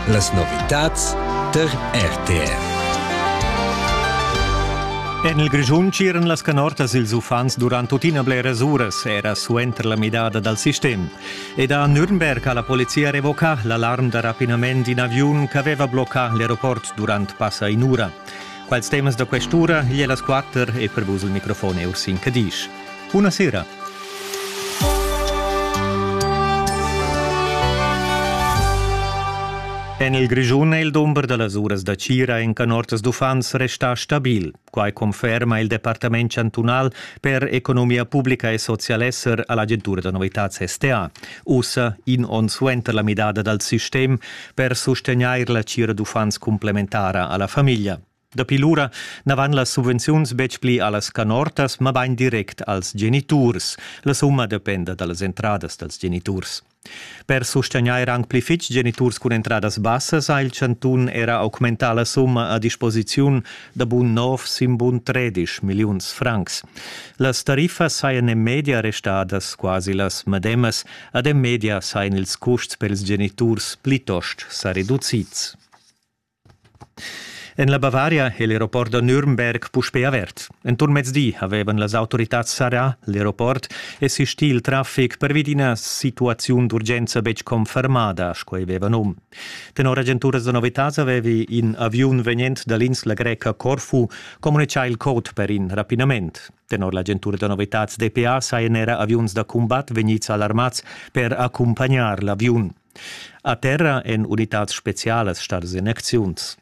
Las novitads tar RTR. En il Grischun tsiran las canortas ils uffants durant tuttina bleras uras, era suenter la midada dal sistem. Ed a Nürnberg ha la polizia revocà l'alarm da rapinament d'in aviun ch'aveva bloccà l'aeroport durant passa in'ura. Quals temas da quest'ura e las quatter e per vus il microfon è Ursin Cadisch. Buona sera! En il Grischun è il dumber da las uras da Cira en canortas d'uffants restà stabil. Quai conferma il Departament chantunal per economia pubblica e socialesser a l'agentura da novitads STA. Ussa, in onn suenter la midada dal sistem, per sustegnair la tgira d'uffants cumplementara a la famiglia. Dapi lura na van las subvenziuns betg pli a las canortas, mabain direct als geniturs. La summa dependa da las entradas dals geniturs. Per sustegnair anc pli fitg geniturs cun entradas bassas ha il chantun era augmentà la summa a disposiziun da bun nov sin bun tredisch milliuns francs. Las tariffas sajan en media restadas quasi las medemas Ad en media sain ils custs per ils geniturs plitost sa reducids. En la Bavaria è l'aeroport da Nürnberg puspè avert. Enturn mezdi avevan las autoritads sarà l'aeroport e sistì il traffic per vid ina situaziun d'urgenza betg confermada, sco ei veva num. Tenor agenturas da novitads avevi in aviun vegnent da l'insla greca Corfu communicà il code per in rapinament. Tenor l'agentura da novitads DPA sajan era aviuns da cumbat vegnids alarmads per accumpagnar l'aviun. A terra èn unitads spezialas stadas en acziuns.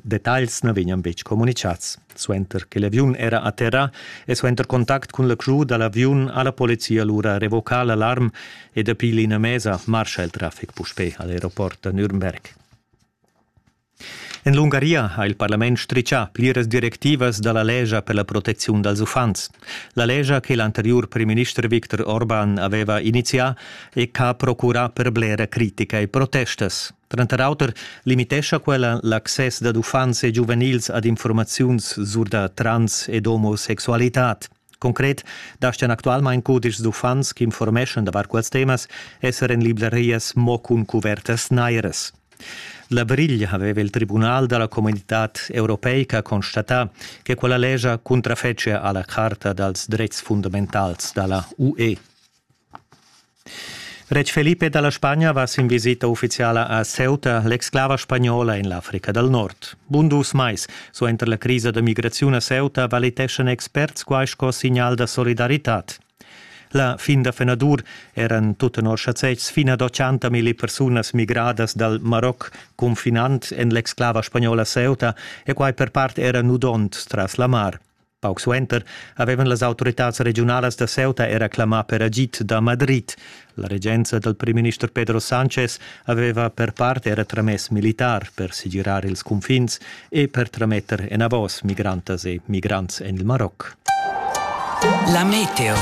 Detagls na vegnan betg communicads. Suenter che l'aviun era a terra e suenter contact cun la crew da l'aviun ha la polizia lura revoca l'alarm e dapi l'ina mesa marscha il traffic puspè a l'aeroport da Nürnberg. En l'Ungaria ha il parlament stritgà pliras directivas da la lescha per la protecziun dals uffants. La lescha che l'anteriur primminister Viktor Orban aveva inizià e ch'ha procurà per blera critica e protestas. Tranter auter limitescha quella l'access dad uffants e giuvenils ad informaziuns sur da trans ed omosexualitad. Concret daschian actualmain cudischs d'uffants ch'informeschan davart quels temas esser en librarias mo cun cuvertas nairas. La briglia aveva il tribunal da la comunitad europeica constatà che quella lescha cuntrafetschia a la Charta dals dretgs fundamentals da la UE. Retg Felipe dalla Spagna va sin visita ufficiala a Ceuta, l'exclava spagnola en l'Africa dal Nord. Bun dus mais suenter la crisa da migraziun a Ceuta valiteschan experts quai sco signal da solidaritad. La fin da fenadur eran tut tenor schazetgs fin ad 80 milli persunas migradas dal Maroc confinant en l'exclava spagnola Ceuta e quai per part era nudond tras la mar. Pauc suenter avevan las autoritads regiunalas da Ceuta era clamà per agid da Madrid. La regenza dal primminister Pedro Sánchez aveva per part era tramess militar per segirar ils cunfins e per trametter enavos migrantas e migrants en il Maroc. La meteo.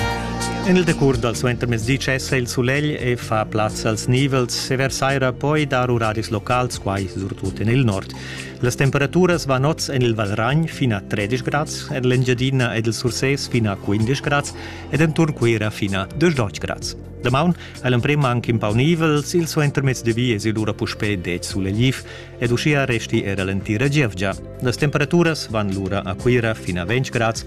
En il decurs dal suentermezdi cessa il sulegl e fa plaz als nivels e versaira poi dar uraris locals, quai surtut en il nord. Las temperaturas van oz en il Valragn fin a 13 grads, en l'Engiadina ed il Sursés fin a 15 grads ed enturn Cuira fin a 18 grads. Damaun ha l'emprim anc in pau nivel, il suentermezdi vi es lura puspè 10 sulegl ed uschia resti era l'entira gievgia. Las temperaturas van lura a Cuira fin a 20 grads